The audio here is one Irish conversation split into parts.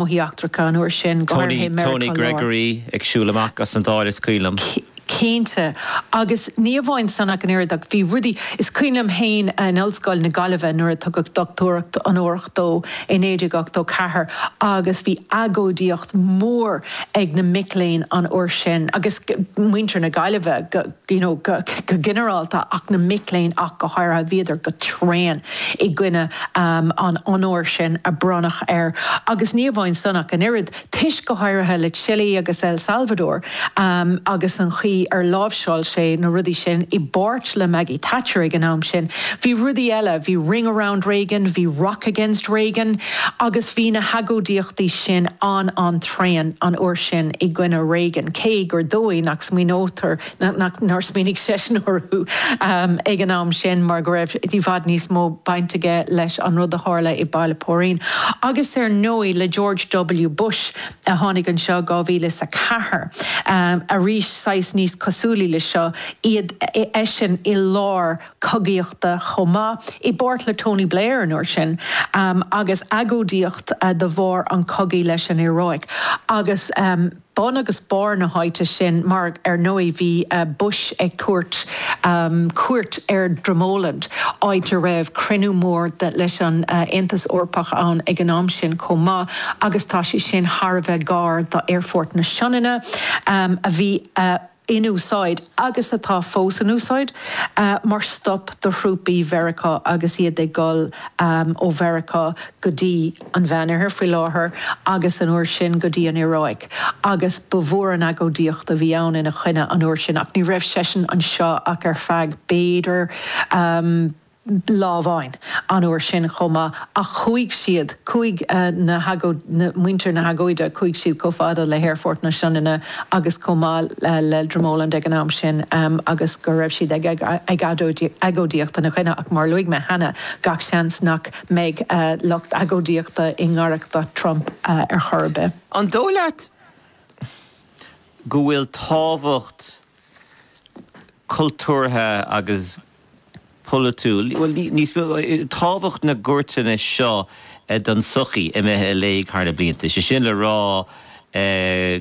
Gnóthaí eachtracha an uair sin, go háirithe i Meiriceá Láir. Tony Gregory ag siúl amach as an Dáil, is cuimhin liom. Cinnte. Agus ní amháin san ach an oiread, ach bhí rudaí, is cuimhin liom féin in Ollscoil na Gaillimhe nuair a tugadh dochtúireacht onórach dó i 1984 agus bhí agóidíocht mhór ag na mic léinn an uair sin, agus muintir na Gaillimhe go. you know go ginearálta ach na mic léinn ach go háirithe, bhíodar go tréan i gcoinne an onóir sin a bronnadh air agus ní amháin san ach an oiread, toisc go háirithe le Chile agus El Salvador agus an chaoi ar láimhseáil sé na rudaí sin, i bpáirt le Maggie Thatcher ag an am sin. Bhí rudaí eile, bhí Ring Around Reagan, bhí Rock Against Reagan agus bhí na hagóidíochtaí sin an-an-tréan an uair sin i gcoinne Reagan cé gur dóigh nach smaoineofar nár smaoinigh seisean orthu ag an am sin mar go raibh i bhfad níos mó baint aige leis an rud a tharla i Baile Póirín. Agus ar ndóigh le George W. Bush a tháinig anseo i 2004, arís saghas níos cosúla le seo iad, eisean i lár cogaíochta chomh maith, i bpáirt le Tony Blair an uair sin, agus agóidíocht de bharr an chogaidh leis an Iaráic. Agus. bun agus barr na háite sin mar, ar ndóigh, bhí Bush ag tabhairt cuairt ar Dromoland, áit a raibh cruinniú mór leis an Aontas Eorpach ann ag an am sin chomh maith agus tá sé sin thar a bheith gar d'Aerfort na Sionainne, a bhí in úsáid, agus atá fós in úsáid, mar stop do thrúpaí Mheiriceá agus iad ag dul ó Mheiriceá go dtí an Meánoirthear, faoi láthair, agus an uair sin, go dtí an Iaráic, agus ba mhór an agóidíocht a bhí ann ina choinne an uair sin, ach ní raibh seisean anseo ach ar feadh, b'fhéidir, lá amháin an uair sin chomh maith ach chuaigh siad, chuaigh na hagóid, na, muintir na hagóide, chuaigh siad chomh fada le hAerfort na Sionainne agus chomh maith le Dromoland ag an am sin agus go raibh siad ag agóidíocht ina choinne ach mar a luaigh mé cheana, gach seans nach mbeidh lucht agóidíochta i ngaireacht Trump ar chor ar bith. An dóigh leat go bhfuil tábhacht cultúrtha agus polaitiúil, bhuel, níos mó, tábhacht na gcuairteanna seo don tsochaí imithe i léig thar na blianta. Sé sin le rá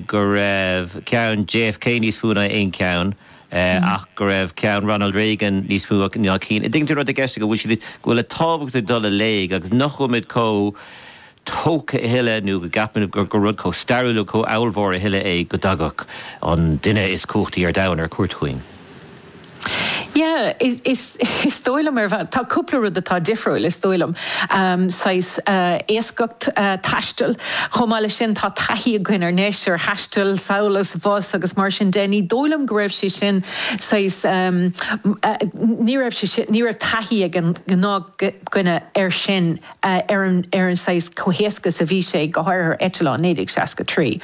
go raibh ceann JFK níos mó ná aon cheann ach go raibh ceann Ronald Reagan níos mó ná na cinn. An dtuigeann tú an rud atá i gceist agam, go bhfuil sé, go bhfuil an tábhacht ag dul i léig agus nach bhfuilimid chomh tógtha a thuilleadh nó go gceapfainn gur rud chomh stairiúil agus chomh ollmhór a thuilleadh é go dtagadh an duine is cumhachtaí ar domhan ar cuairt chugainn. Yeah, is, is dóigh liom ar bhealach, tá cúpla rud atá difriúil, is dóigh liom, saghas éascacht taistil. Chomh maith leis sin, tá taithí againn anois, ar thaisteal, abhus agus mar sin de. Ní dóigh liom go raibh sé sin saghas, ní raibh sé sin, ní raibh taithí ag an ngnáthdhuine air sin. ar an saghas chomh héasca is a bhí sé, go háirithe eitleáin, 1963.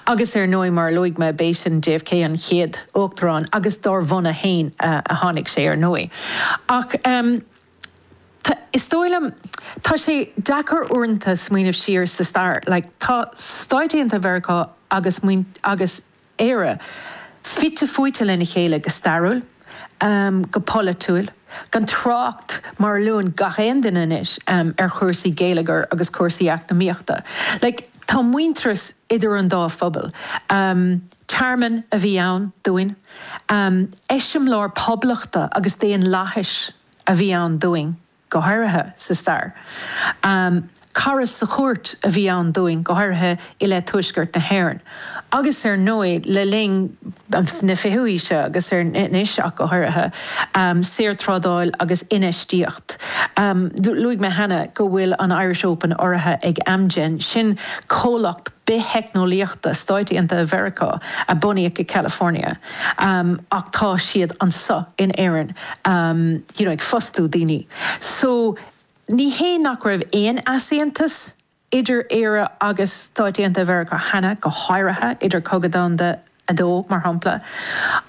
Agus ar ndóigh, mar a luaigh mé, b'é sin, JFK an chéad uachtarán, agus dár bhunadh fhéin a tháinig sé ar ndóigh. Ach is dóigh liom, tá sé deacair uaireanta smaoineamh siar sa stair, like tá stáit aontaithe Mheiriceá agus, agus, Éire, fite fuaite lena chéile go stairiúil, go polaitiúil, gan trácht mar a luann gach aon duine anois ar chúrsaí geilleagair agus cúrsaí eacnamaíochta. Like, tá muintearas idir an dá phobal. Tearmann a bhí ann dúinn. Eiseamláir poblachta agus daonlathais a bhí ann dúinn. go háirithe sa stair. Cara sa chúirt a bhí ann dúinn, go háirithe i leith Tuaisceart na hÉireann, agus ar ndóigh le linn na fichiú haoise agus anois ach go háirithe, saorthrádáil agus infheistíocht. Luaigh mé cheana go bhfuil an Irish Open urraithe ag Amgen, sin comhlacht biththeicneolaíochta Stáit Aontaithe Mheiriceá a bunaíodh i California. um ach tá siad anseo in Éirinn um you know ag fostú daoine so ní hé nach raibh aon easaontas idir Éire agus Stáit Aontaithe Mheiriceá cheana, go háirithe idir Cogadh Domhanda 2, mar shampla,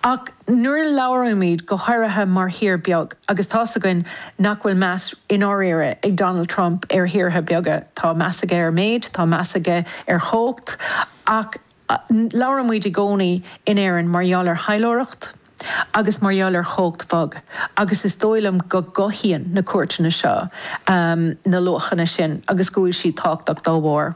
ach nuair a labhraímid, go háirithe mar thír beag, agus tá's againn nach bhfuil meas i ndáiríre ag Donald Trump ar thíortha beaga, tá meas aige ar méid, tá meas aige ar chumhacht ach, Labhraímid i gcónaí in Éirinn mar gheall ar thaidhleoireacht agus mar gheall ar chumhacht bhog agus is dóigh liom go gcothaíonn na cuairteanna seo na luachanna sin agus go bhfuil siad tábhachtach dá bharr.